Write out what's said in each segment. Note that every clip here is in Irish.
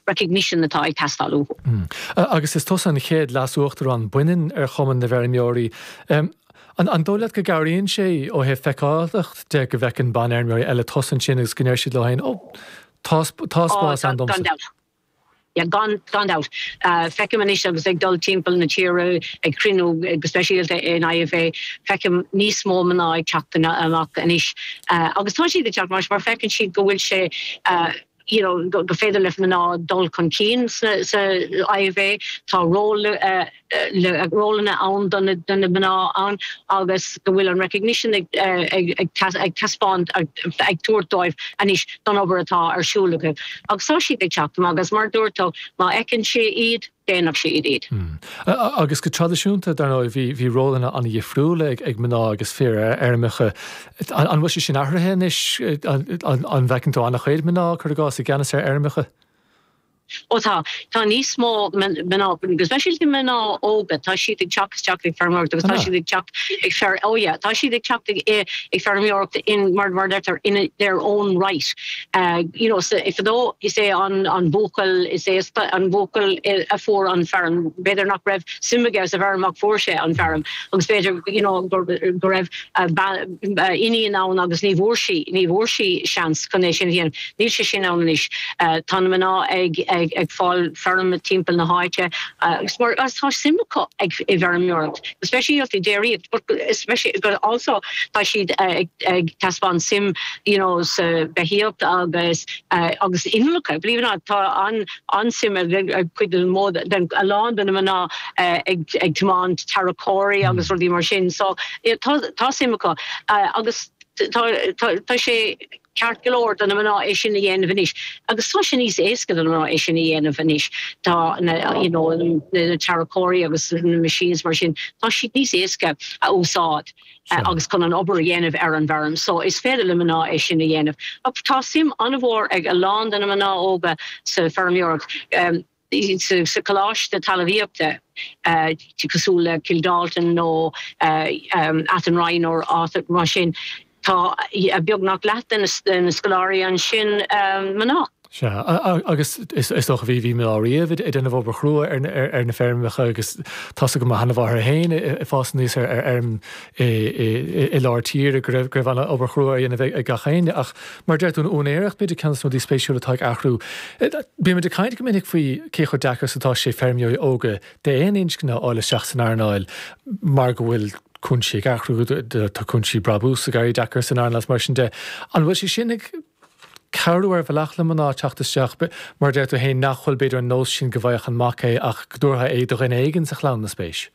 recognition atá ag teastáil uathu. Agus is tusa an chéad Leas-Uachtarán baineann ar Chumann na bhFeirmeoirí. An dóigh leat go gcabhraíonn sé ó thaobh feiceálachta de go bhfeiceann banfheirmeoirí eile tusa ansin agus go ndeir siad leo féin, 'Ó, tá spás ann domsa'? Ó, gan dabht. Gan dabht. Feicim anois agus ag dul timpeall na tíre ag cruinniú go speisialta in IFA, feicim níos mó mná ag teacht amach anois. Agus tá siad ag teacht, mar feiceann siad go bhfuil sé, you know, gur féidir le mná dul chun cinn sa IFA. Tá ról rólanna ann do na mná ann agus go bhfuil an recognition ag taispeáint ag tabhairt dóibh anois don obair atá ar siúl acu. Agus tá siad ag teacht amach agus mar a dúirt tú má fheiceann sí iad, déanfadh siad iad. Mh. Agus go traidisiúnta, dar ndóigh, bhí, bhí rólanna an-dhifriúla ag, ag mná agus fir ar fheirmeacha. An, an bhfuil sé sin athraithe anois? An, an bhfeiceann tú an-chuid mná, cuir i gcás, i gceannas ar fheirmeacha? Ó tá. Tá níos mó mná, especially mná óga, tá siad ag teacht isteach ag feirmeoireacht agus An ea? Tá siad ag teacht ag feirm, oh yeah, tá siad ag teacht ag, ag feirmeoireacht in, mar, mar a deirtear, in a, their own right. ag, you know, sa, fadó is é an, an buachaill is aosta, an buachaill i, a fuair an feirm, b'fhéidir nach raibh suim aige sa bhfeirm ach fuair sé an feirm agus b'fhéidir you know, gur, go raibh a bean, a iníon ann agus ní bhfuair sí, ní bhfuair sí seans chun é sin a dhéanamh. Níl sé sin ann anois. Eh, tá na mná ag, ag, ag fáil feirm timpeall na háite agus mar, agus tá suim acu ag, i bhfeirmeoireacht. especially déiríocht but speisi but also tá siad ag ag taispeáint suim you know sa beithíocht agus agus innealra believe it or not tá an an-suim ag ag cuid den mód den a lán de na mná ag ag tiomáint tarracóirí agus rudaí mar sin so tá tá suim acu agus tá tá tá sé Ceart go leor do na mná é sin a dhéanamh anois agus tá sé níos éasca do na mná é sin a dhéanamh anois. Tá na, you know, na tarracóirí agus na machines mar sin, tá siad níos éasca a úsáid agus chun an obair a dhéanamh ar an bhfeirm. So, is féidir le mná é sin a dhéanamh ach tá suim an-mhór ag a lán de na mná óga sa feirmeoireacht. sa Coláiste Talamhaíochta cosúil le Kildalton nó Athenry nó áiteacha mar sin tá beagnach leath de na scoláirí ansin mná. Sea. Agus is dócha bhí mná riamh ag déanamh obair chrua ar na feirmeacha agus tá's agam mo sheanmháthair féin ag fás aníos ar fheirm i lár tíre go raibh an obair chrua á dhéanamh ag gach éinne ach Mar a deir tú, in úinéireacht bímid ag caint faoi rudaí spéisiúla atá ag athrú. Bímid ag caint go minic faoi cé chomh deacair is atá sé feirmeoirí óga d'aon inscne a fháil isteach san earnáil mar go bhfuil cúinsí ag athrú, tá cúinsí brabús ag éirí deacair san earnáil is mar sin de. An bhfuil sé sin ag cabhrú ar bhealach le mná teacht isteach? Mar a deir tú féin, nach bhfuil b'fhéidir an nós sin go bhfaigheadh an mac é ach go dtabharfaí é do dhuine éigin sa chlann, má tá spéis.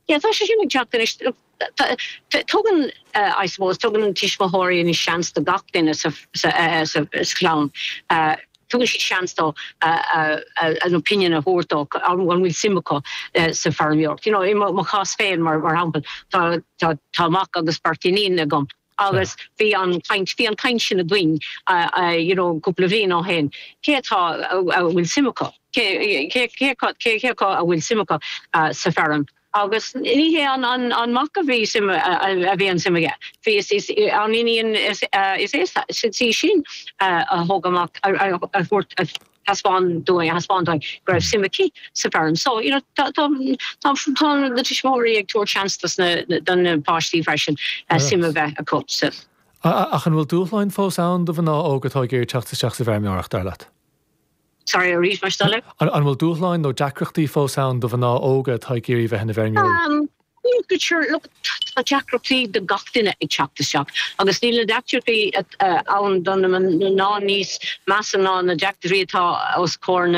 Yeah, tá sé sin ag teacht anois. Tugann, I suppose, tugann na tuismitheoirí anois seans do gach duine sa chlann, tugann siad seans dóibh an opinion a thabhairt dóibh, an bhfuil suim acu sa fheirmeoireacht. You know, i mo chás féin mar shampla, tá mac agus beirt iníon agam. agus bhí an chaint, bhí an chaint sin againn you know cúpla bhliain ó shin, cé atá, a bhfuil suim acu, cé, cé, cé acu, cé, cé acu a bhfuil suim acu sa feirm agus ní hé an, an, an mac a bhí suim, a bhí an suim aige, bhí is, is an iníon is, is é, is í sin a thug amach, a thabhairt. thaispeáin dúinn, a thaispeáin dúinn go raibh suim aici sa bhfeirm. So, you know, tá, tá, tá, tá na tuismitheoirí ag tabhairt seans dos na, na, do na páistí freisin eh, suim a Alright. bheith acu sa, A- a- Ach an bhfuil dúshláin fós ann do mhná óga atá ag iarraidh teacht isteach sa bhfeirmeoireacht, dar leat? sorry, arís, mar stelle. An, an bhfuil dúshláin nó deacrachtaí fós ann do mhná óga atá ag iarraidh bheith ina bhfeirmeoirí? Um, Bhuel sure, look, tá deacrachtaí do gach duine ag teacht isteach agus níl na deacrachtaí ann do na mná ná níos measa ná na deacrachtaí atá os comhair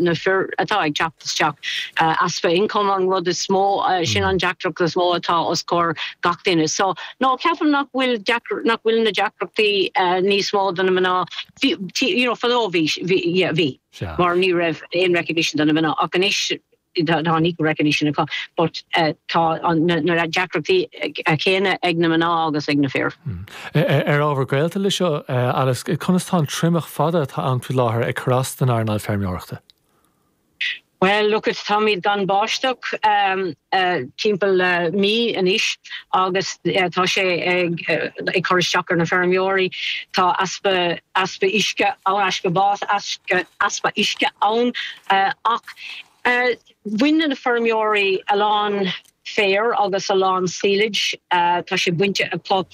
na fir atá ag teacht isteach. Easpa income an rud is mó, sin an deacracht is mó atá os comhair gach duine. So, no, ceapaim nach bhfuil nach bhfuil na deacrachtaí níos mó do na mná. Bhí, you know, fadó bhí, yeah, bhí. Mar ní raibh aon recognition do na mná ach anois, tá an recognition acu but tá na deacrachtaí céanna ag na mná agus ag na fir. Ar ábhar gaolta leis seo, Alice, conas tá an triomach fada atá ann faoi láthair ag cur as don earnáil feirmeoireachta? Bhuel, look it, táimid gan báisteach timpeall le mí anois agus tá sé ag cur isteach ar na feirmeoirí. Tá easpa uisce, easpa uisce ann ach Bhain na feirmeoirí a lán féir agus a lán silage. Tá sé bainte acu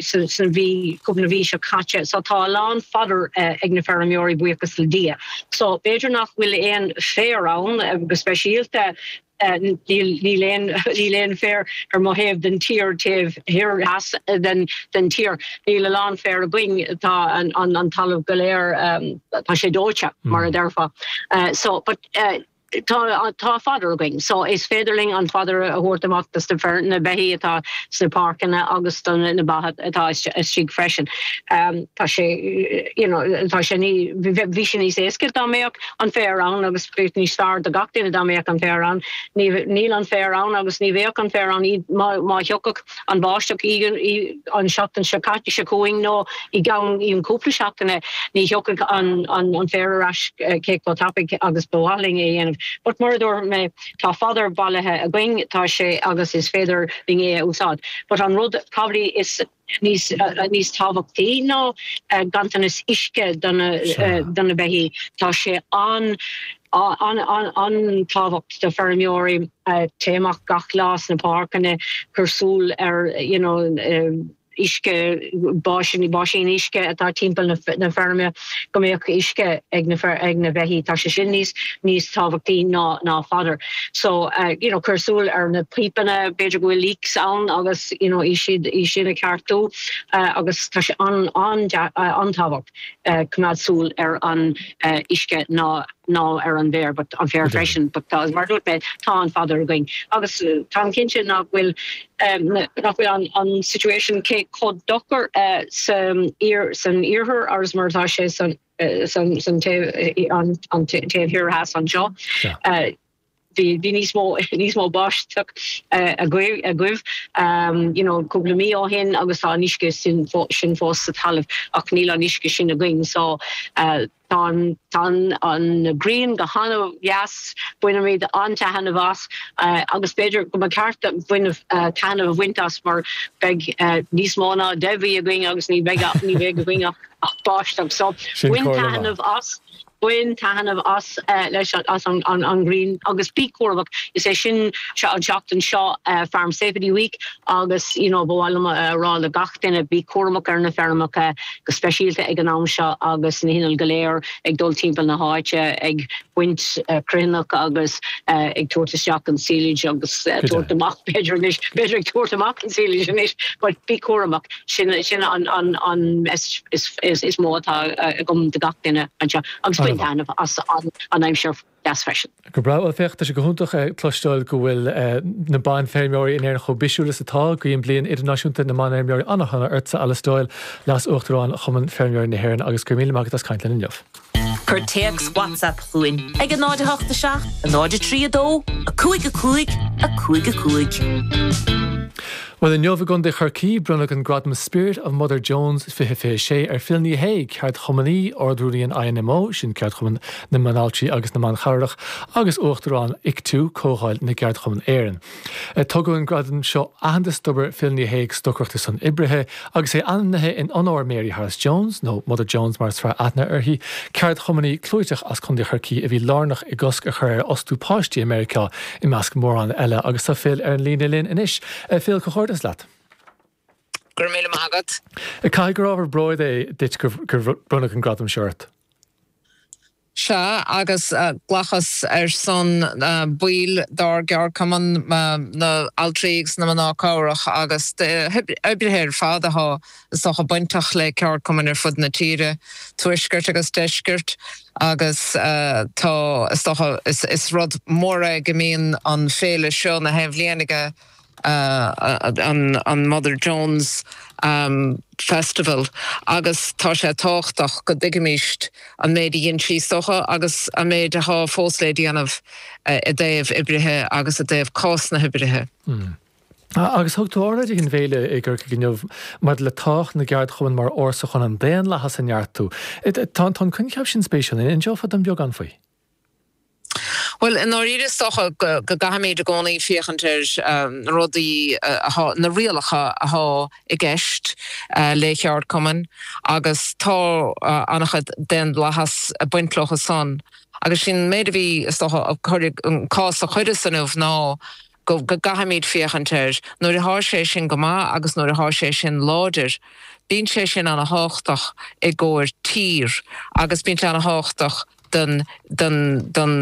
sa mhí, cúpla na mhí seo caite. So tá a lán fodder ag na feirmeoirí, buíochas le Dia. So b'fhéidir nach bhfuil aon féar ann go speisialta. Níl aon níl aon féar ar mo thaobh den tír, taobh thoir theas den den tír. Níl a lán féir againn. Tá an an an talamh go léir tá sé dóite mar a déarfá. So but tá tá fodder againn so is féidir linn an fodder a thabhairt amach do sna feir na beithí atá sna páirceanna agus do na ba atá istigh freisin. Tá sé you know tá sé ní bheadh sé níos éasca dá mbeadh an féar ann agus bheadh níos fearr do gach duine dá mbeadh an féar ann. Níl an féar ann agus ní bheadh an féar ann má thiocfadh an bháisteach an seachtain seo caite, seo chugainn nó i gceann cúpla seachtaine ní thiocfadh an féar ar ais cé chomh tapaidh agus ba mhaith linn é a dhéanamh. But mar a dúirt mé tá fodar bailithe againn, tá sé agus is féidir linn é a úsáid. But an rud b'fhéidir is. níos níos tábhachtaí ná ganntanas uisce do na Sure. do na beithígh. Tá sé an an an an tábhacht do feirmeoirí téigh amach gach lá sna páirceanna cur súil ar you know uisce báisíní báisín uisce atá timpeall na na feirme. go mbeadh uisce ag na fir ag na beithígh tá sé sin níos níos tábhachtaí ná ná fadar. So you know cuir súil ar na pípeanna b'fhéidir go bhfuil leaks ann agus you know iad sin iad sin a cheartú agus tá sé an an an tábhacht coimeád súil ar an uisce ná ná ar an bhféar but an féar freisin but tá mar a dúirt mé tá an fadar againn agus táim cinnte nach bhfuil nach bhfuil an an situation cé chomh dochar sa iar san iarthar agus mar atá sé san san san taobh an taobh thoir theas anseo. Sea. bhí bhí níos mó níos mó báisteach agaibh agaibh you know cúpla mí ó shin agus tá an uisce sin fó sin fós sa talamh ach níl an uisce sin againn so Tá an ghrian go han-deas, bainimid an-taithneamh as agus b'fhéidir go mba ceart againn taithneamh a bhaint as mar beidh níos mó ná deich mhí againn agus ní bheidh againn ach báisteach so Sin comhairle mhaith. taithneamh as, bain taithneamh as leis as an ghrian agus bí cúramach, is é sin seo an seachtain seo Farm Safety Week agus you know ba mhaith liom a rá le gach duine bí cúramach ar na feirmeacha, go speisialta ag an am seo agus na hinnill go léir ag dul timpeall na háite ag baint cruithneacht agus ag tabhairt isteach an silage agus tabhairt amach b'fhéidir anois, b'fhéidir ag tabhairt amach an silage anois but bí cúramach, sin, sin an, an, an message is, is, is mó atá agam do gach duine anseo agus bain taithneamh as an, an aimsir. dheas freisin. Go breá. Bhuel, féach, tá sé go hiontach a chloisteáil go bhfuil na banfheirmeoirí in Éirinn chomh bisiúil is atá. Guím Bliain Idirnáisiúnta na mBanfheirmeoirí an-sona ortsa, Alice Doyle, Leas-Uachtarán Chumann Feirmeoirí na hÉireann, agus go raibh míle maith agat as caint linn inniu. Cuir téacs WhatsApp chugainn ag 0 8 7 0 3 2 5 5 5 5. Bhuel, inniu i gContae Chorcaí, bronnadh an gradam 'Spirit of Mother Jones 2026 ar Phil Ní Shéaghdha, ceardchumannaí, Ard-Rúnaí an INMO, sin Ceardchumann na mBanaltrai agus na mBan Cabhrach agus Uachtarán ICTU, Comhdháil na gCeardchumann Éireann. Tugann an gradam seo aitheantas d'obair Phil Ní Shéaghdha ag stocaireacht ar son oibrithe agus é ainmnithe in onóir Mary Harris Jones, nó Mother Jones mar is fearr aithne uirthi, ceardchumannaí clúiteach as Contae Chorcaí a bhí lárnach i gcosc a chur ar fhostú páistí i Meiriceá i measc mórán eile agus tá Phil ar an líne linn anois. Phil, comhghairdeas leat. Go raibh míle maith agat. Caithfidh gur ábhar bróid é duit gur bronnadh an gradam seo ort. Sea, agus glacas ar son baill dár gceardchumann, na haltraí agus na mná cabhrach agus oibrithe ar fad athá, is dócha, bainteach le ceardchumainn ar fud na tíre, tuaisceart agus deisceart, agus tá, is dócha, is rud mór é go mbíonn an féile seo 'chaon bhliain ag an Mother Jones Festival agus tá sé tábhachtach go dtuigimíst an méid a dhein sí, is dócha, agus an méid athá fós le déanamh i dtaobh oibrithe agus i dtaobh cás na hoibrithe. Agus thug tú óráid ag an bhféile i gCorcaigh inniu maidir le tábhacht na gceardchumann mar fhórsa chun an daonlathas a neartú. Tá an coincheap sin spéisiúil. An inseofá dom beagán faoi? Bhuel, i ndáiríre is dócha go gcaithfimíd i gcónaí féachaint ar na rudaí atá, na rialacha athá i gceist le ceardchumann agus tá an-chuid daonlathas ag baint leothu san agus sin méid a bhí, is dócha, an cás a chuireas inniu ná go gcaithfimíd féachaint air. Nuair athá sé sin go maith agus nuair athá sé sin láidir bíonn sé sin ana thábhachtach i gcomhair tír agus bíonn sé ana thábhachtach don don don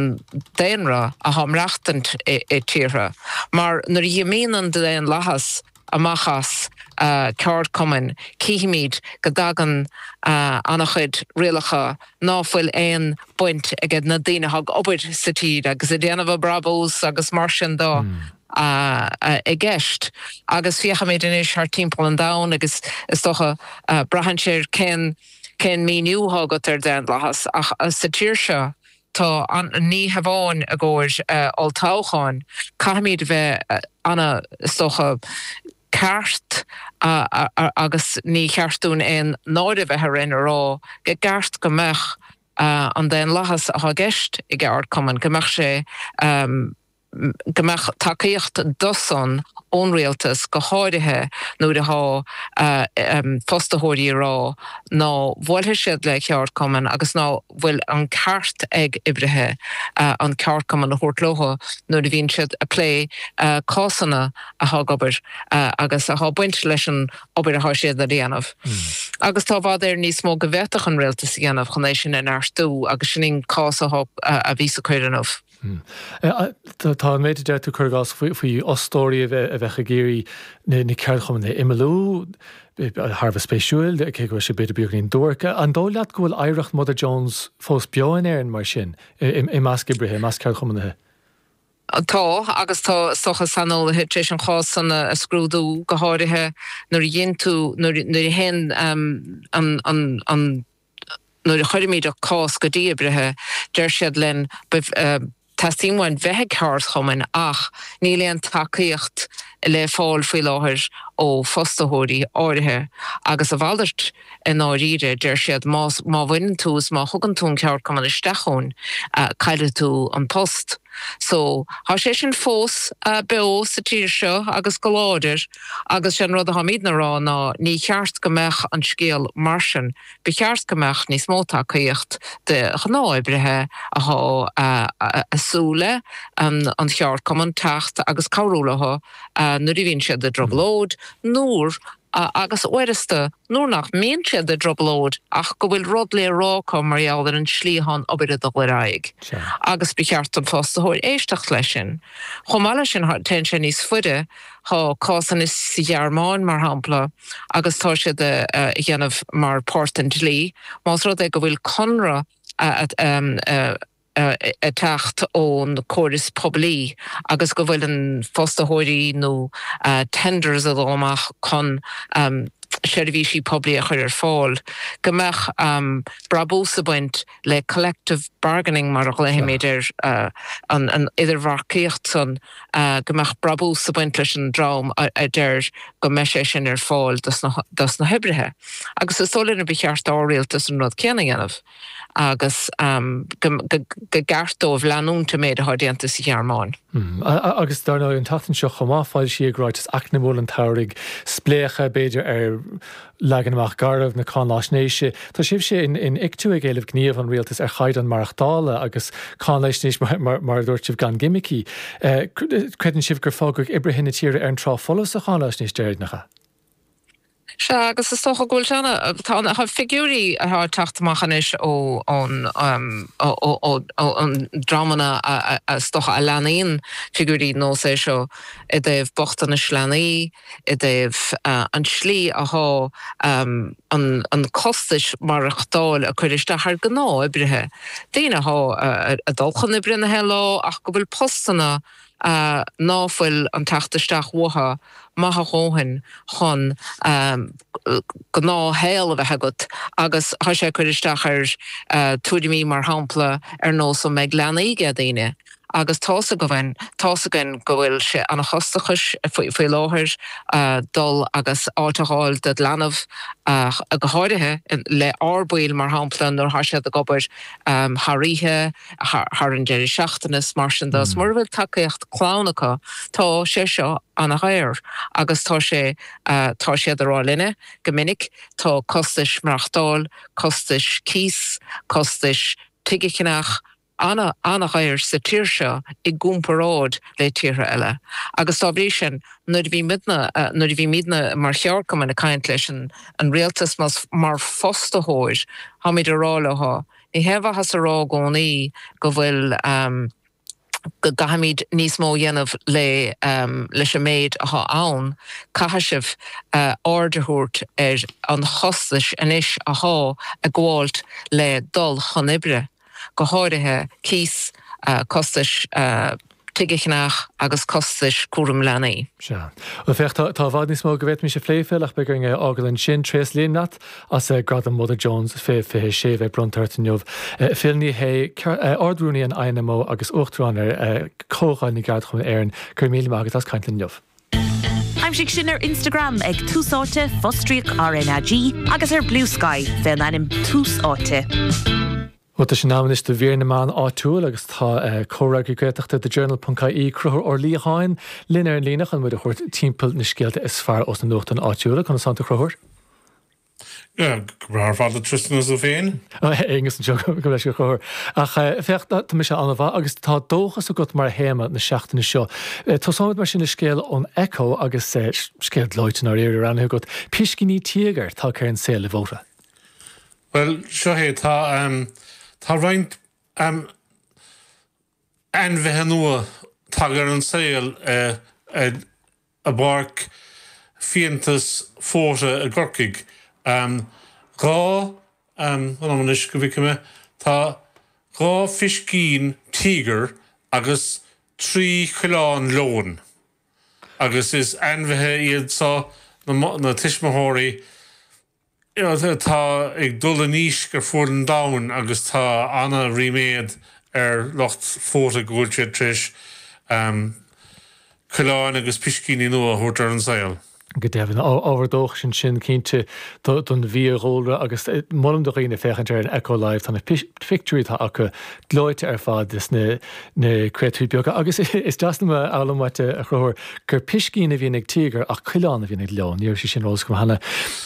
daonra athá ag maireachtaint i i tíortha mar nuair a dhimíonn an daonlathas amach as ceardchumainn, cífimíd go dtagann ana chuid rialacha ná fuil aon baint ag na daoine atá ag obair sa tír agus ag déanamh a brabús agus mar sin de i gceist. Agus féachaimíd anois thart timpeall an domhain agus is dócha braitheann sé ar cén, cén míniú athá agat ar daonlathas ach sa tír seo Tá ní hamháin i gcomhair olltoghcháin, caithfimíd a bheith ansan go ceart agus ní cheart dúinn aon náire a bheith orainn a rá go gceart go mbeadh an daonlathas atá i gceist i gceardchumann, go mbeadh sé. go mbeadh tacaíocht do san ón Rialtas go háirithe nuair athá fostaitheoirí a rá ná bhuailfidh siad le ceardchumann agus ná fuil an ceart ag oibrithe an ceardchumann a thabhairt leo nuair a bhíonn siad a plé cásanna athá ag an obair agus athá baint leis an obair athá siad a dhéanamh. Agus tá i bhfad Éireann níos mó go bhféadfadh an Rialtas a dhéanamh chun é sin a neartú agus sin an cás athá a bhíos a cur inniubh. Hm. Tá an méid a deir tú, cuir i gcás, faoi fhostóirí a bheadh ag iarraidh na ceardchumainn a imeallú, thar a bheith spéisiúil, cé go bhfuil siad b'fhéidir beagáinín duairc. An dóigh leat go bhfuil oidhreacht Mother Jones fós beo in Éirinn mar sin, i measc oibrithe, i measc ceardchumannaithe? Tá, agus is dócha saineolaithe tar éis an chás san a scrúdú, go háirithe nuair a théann tú, nuair a théann an, nuair a chuirimíd cás go dtí oibrithe deir siad linn teastaíonn uainn bheith i gceardchumann ach níl aon tacaíocht le fáil faoi láthair ó fostaitheoirí áirithe agus a mhalairt i ndáiríre, deir siad má bhaineann tú is má thugann tú an ceardchumann isteach chugainn caillfidh tú an post. So, tá sé sin fós beo sa tír seo agus go láidir. Agus sé an rud atáimíd na rá ná ní cheart go mbeadh an scéal mar sin. Ba cheart go mbeadh níos mó tacaíocht do ghnáthoibrithe athá a súil le ceardchumann teacht agus cabhrú leo nuair a bhíonn siad i dtrioblóid, nuair, agus uaireanta nuair nach mbíonn siad i dtrioblóid ach go bhfuil rud le rá acu mar gheall ar an slí go bhfuil an obair a dul ar aghaidh. Agus ba cheart don fostaitheoir éisteacht leis sin. Chomh maith leis sin téann sé níos faide Tá cásanna sa Ghearmáin, mar shampla, agus tá siad a dhéanamh mar páirt den dlí, más rud é go bhfuil conradh ag teacht ón córas poiblí agus go bhfuil an fostaitheoirí nó tenders a dul amach chun seirbhísí poiblí a chur ar fáil, go mbeadh brabús a baint. le collective bargaining mar a ghlaoimid air, an idirbheartaíocht san, go mbeadh brabús a baint leis an dream a deir go mbeidh sé sin ar fáil dos na hoibrithe. Agus is dóigh linn gur ba cheart d'ár Rialtas an rud céanna a dhéanamh agus go gceart dóibh leanúint an méid atá déanta sa Ghearmáin. Agus dar ndóigh an tseachtain seo chomh maith foilsíodh Ráiteas Eacnamaíoch an tSamhraidh, spléachadh b'fhéidir ar Leagan amach garbh na cáinaisnéise. Tá sibh sé in in ICTU ag éileamh gníomh ón Rialtas ar chaighdeán maireachtála agus cáinaisnéis mar mar mar a dúirt sibh gan gimicí. Eh cr creideann sibh gur fágadh oibrithe na tíre ar an trá folamh sa cháinaisnéis deireanach? Sea, agus is dócha go bhfuil sé ann. Tá na figiúirí atá ag teacht amach anois ó ón ehm ó ó ó ó ón dreamanna a a a is dócha a leanann figiúirí nós é seo i dtaobh bochtainis leanaí, i dtaobh an tslí athá an costais maireachtáil ag cur isteach ar gnáth-oibrithe, daoine athá ag dul chun oibre gach aon lá ach go bhfuil postanna ná fuil an teacht isteach uatha maith a dhóthain chun gnáth-shaol a bheith agat agus thá sé ag cur isteach ar tuairimí mar shampla ar nós an mbeidh leanaí aige daoine Agus tá's againn, tá's againn go bhfuil sé ana chostachais faoi láthair dul agus áit a dh'fháil dod' leanbh ach go háirithe le ár baill mar shampla nuair thá siad ag obair thar oíche, thar an deireadh seachtaine 's mar sin do. 'S mura bhfuil tacaíocht clann acu tá sé seo ana dhaor agus tá sé, tá siad ag rá linne go minic tá costais maireachtáil, costais cíos, costais tigh a cheannach, ana, ana-dhaor sa tír seo i gcomparáid le tíortha eile agus dá bhrí sin nuair a bhímídne, nuair a bhímídne mar cheardchumainn ag caint leis an Rialtas nó mar fostaitheoir táimid ag rá leo ní haon mhaitheas a rá i gcónaí go bhfuil, go gcaithfimíd níos mó a dhéanamh le, leis an méid atá ann, caithfidh sibh aird a thabhairt ar an chostais anois atá ag gabháilt le dul chun oibre. go háirithe cíos, costais tigh a cheannach agus costais cúram leanaí. Sea. Bhuel, féach, tá, tá i bhfad níos mó go bhféadfaimis a phlé, Phil, ach beidh orainn é a fhágail ansin. Tréaslaím leat as Gradam Mother Jones 2026 a bheith bronnta ort inniu. Phil Ní Sheaghdha, Ard-Rúnaí an INMO agus Uachtarán ar Chomhdháil na gCeardchumann Éireann, go raibh míle maith agat as caint linn inniu. Aimsigh sinn ar Instagram ag Tús Áite, fostríoc RnaG, agus ar Bluesky fé an ainm Tús Áite. Bhuel, tá sé in am anois do Mhír na Meán Áitiúil agus tá comhfhreagraí Gaeltachta The Journal.ie, Concubhar Ó Liatháin, linn ar an líne chun muid a thabhairt timpeall na scéalta is fearr ós na nuachtáin áitiúla. Conas atánn tú, a Choncubhair? Go breá ar fad, a Tristan, is tú féin? A Aonghus, anseo go leis an chóir. Ach féach, tá mise an-mhaith agus tá dóchas agat mar théama na seachtaine seo. Tosóimid mar sin le scéal ón Echo agus scéal gleoite i ndáiríre roghnaithe agat, piscíní tíogair tagtha ar an saol i bhFóta. Bhuel, seo é, tá, tá roinnt, ainmhithe nua tagtha ar an saol i bPáirc Fiantas Fódhla i gCorcaigh. Dhá, fan anois go bhfeice mé, tá dhá phiscín tíogair agus trí choileán leoin agus is ainmhithe iad seo na tuismitheoirí, atá ag dul i ndísc ar fuaid an domhain agus tá ana ríméad ar lucht Fota go bhfuil siad tar éis coileáin agus piscíní nua a thabhairt ar an saol. Go deimhin, ábhar dóchais ansin cinnte don bhfiadhúlra agus molaim do dhaoine féachaint ar an Echo Live, tá na, pictiúirí atá acu gleoite ar fad. na créatúir beaga agus is deas liom a fhoghlaim uait, a Chonchúir, gur piscín a bhíonn ag tíogar ach coileán a bhíonn ag leon. Ní raibh sé ar eolas agam cheana.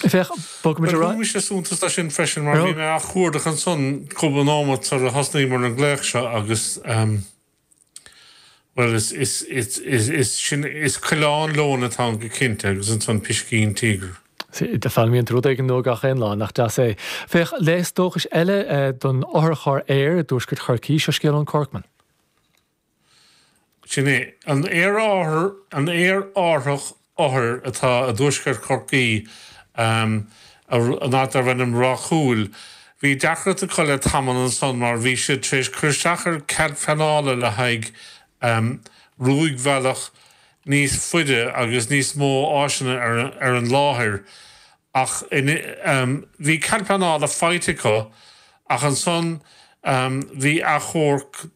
Féach, bhuel, thug mise suntas dó sin freisin mar bhí mé á chuardach ansan cúpla nóimeat sar a thosnaíomar an glaoch seo agus ehm bhuel is is is is is sin is coileán leoin atá ann go cinnte agus ansan piscín tíogair. Sea, foghlaimíonn tú rud éigin nua gach aon lá, nach deas é. Féach léas dóchais eile don otharcharr aeir i dtuaisceart Chorcaí, seo scéal ón Corkman. Sin é. An aerárthach othair atá i dtuaisceart Chorcaí, an áit darb ainm Ráth Chúil. Bhí deacracht acu le tamall ansan mar bhí siad tar éis cur isteach ar chead pleanála le haghaidh rúidbhealach níos faide agus níos mó áiseanna ar an láthair ach bhí cead pleanála faighte acu ach ansan bhí achomharc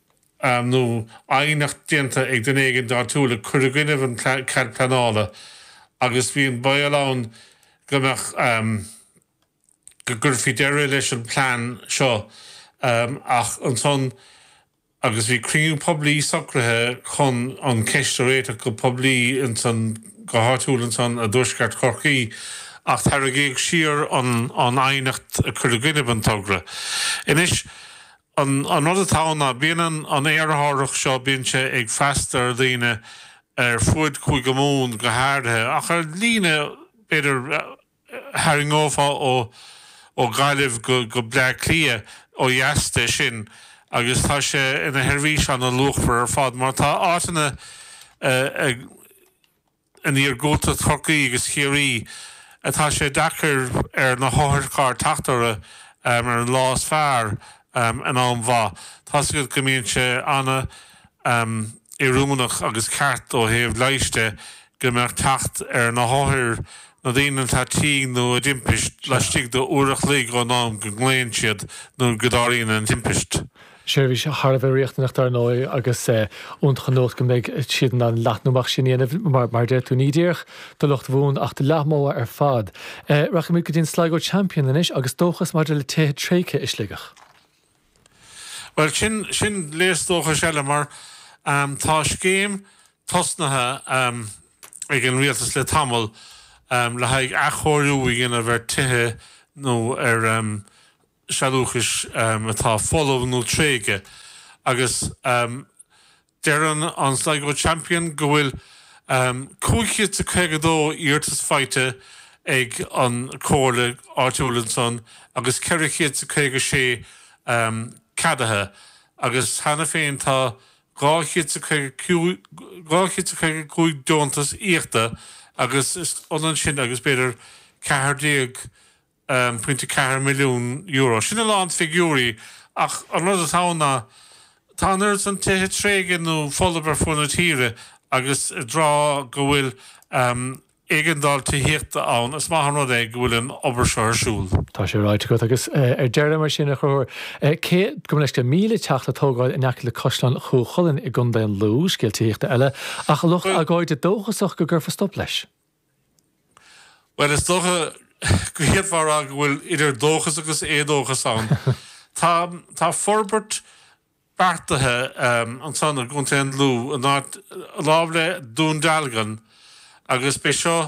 nó aighneacht déanta ag duine éigin áitiúil a chuir i gcoinnibh an cead pleanála agus bhí an baol ann go mbeadh go gcuirfí deireadh leis an plean seo ach ansan agus bhí cruinniú poiblí socraithe chun an cheist a réiteach go poiblí ansan, go háitiúil ansan i dtuaisceart Chorcaí, ach tairrigíodh siar an aighneacht a chuir i gcoinnibh an togra. Anois, an rud atá ann ná bíonn an t-aerárthach seo, bíonn sé ag freastal ar dhaoine ar fuaid Chúige Mumhan go háirithe, ach ar líne b'fhéidir tharraingeofá ó Ghaillimh go Bleá Cliath ó dheas de sin agus tá sé ina sheirbhís ana luachmhar ar fad mar tá áiteanna in iargúltacht Chorcaí agus Chiarraí atá sé deacair ar na hotharchairr teacht orthu ar an lá is fearr in am mhaith. Tá's agat go mbíonn sé ana. oiriúnach agus ceart ó thaobh leighis de go mbeadh teacht ar na hothair, na daoine atá tinn nó i dtimpist, laistigh de uair a chloig ón am go nglaonn siad nó go dtarlaíonn an timpist. Seirbhís thar a bheith riachtanach dar ndóigh agus iontach an nua go mbeidh siad in ann leathnú amach sin a dhéanamh mar a deir tú. Ní díreach do lucht Mhumhan ach do Leath Mhogha ar fad. Rachaimid go dtí an Sligo Champion anois agus dóchas maidir le tithe tréigthe i Sligeach. Bhuel, sin léas dóchais eile mar tá scéim tosnaithe ag an Rialtas le tamall le haghaidh athchóiriú a dhéanamh ar tithe nó ar sealúchais atá folamh nó tréigthe agus Deireann an Sligo Champion go bhfuil 552 iarratas faighte ag an comhairle áitiúil ansan agus 456 ceadaithe agus cheana féin tá 255 deontas íochta agus is ionann sin agus b'fhéidir 14 .4 milliún euro. Sin a lán figiúirí ach an rud atá ann ná tá an oiread san tithe tréigthe nó folamh ar fuaid na tíre agus i dtráth go bhfuil éigeandáil tithíochta ann is maith an rud é go bhfuil an obair seo ar siúl. Tá sé ráite agat agus ar deireadh mar sin a Chonchúir breis agus míle teach le tógáil in aice le Caisleán Chú Chulainn i gContae an Lú, scéal tithíochta eile, ach lucht agóide dóchasach go gcuirfear stop leis. Bhuel, is dócha go bhféadfá a rá go bhfuil idir dóchas agus éadóchas ann. Tá, tá forbairt beartaithe ansan i gContae an Lú, in áit lámh le Dún Dealgan agus b'é seo,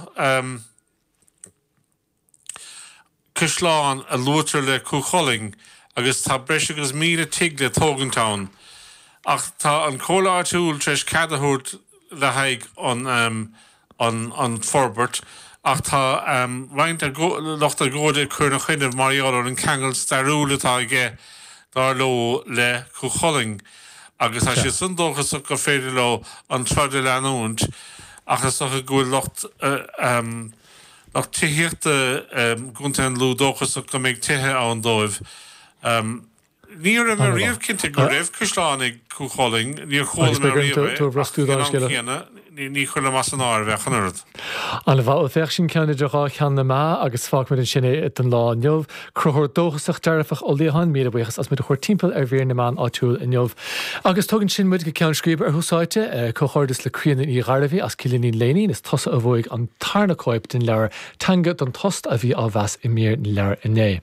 caisleán a luaitear le Cú Chulainn agus tá breis agus míle tigh le tógaint ann ach tá an Comhairle Áitiúil tar éis cead a thabhairt le haghaidh an forbairt ach tá roinnt lucht agóide ag cur ina choinne mar gheall ar an ceangal stairiúil atá aige dar leo le Cú Chulainn agus tá siad san dóchasach gur féidir leo an troid a leanúint ach is dócha go bhfuil lucht Lucht tithíochta i gContae an Lú dóchasach go mbeidh tithe ann dóibh. Ní raibh mé riamh cinnte go raibh caisleán ag Cú Chulainn, níor chuala mé riamh é, ach ag an am céanna ní chuirfinn as an áireamh é, chan oiread. Ana mhaith, ó féach sin ceann idir dhá cheann na meá agus fágfaimid ansin é don lá inniu. Concubhar dóchasach dearfach Ó Liatháin, míle buíochas as muid a thabhairt timpeall ar mhír na meán áitiúil inniu. Agus tugann sin muid go ceann scríbe, ar Thús Áite, comhghairdeas le Críona Ní Ghairbhí as Cillínín Léinín, is tusa a bhuaigh an tarna cóip den leabhar Teanga don Tost a bhí á mheas i mír na leabhar inné.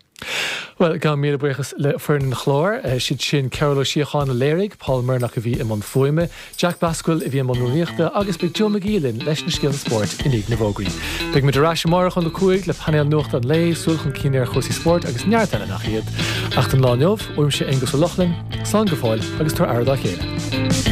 Bhuel, gabhaim míle buíochas le foireann an chláir, siad sin Cearbhall Ó Síocháin a léirigh, Paul Murnock a bhí i mbun fuaime, Jack Basquill a bhí i mbun rúnaíochta agus beidh Joe McGee linn leis na scéalta spóirt i ndiaidh na bhfógraí. Beidh muid ar ais amárach óna cúig le painéal nuachta an lae, súil chun cinn ar chúrsaí spóirt agus neart eile nach iad. Ach don lá inniu, uaimse Aonghus Ó Lochlainn, slán go fóill agus tabhair aire dá chéile.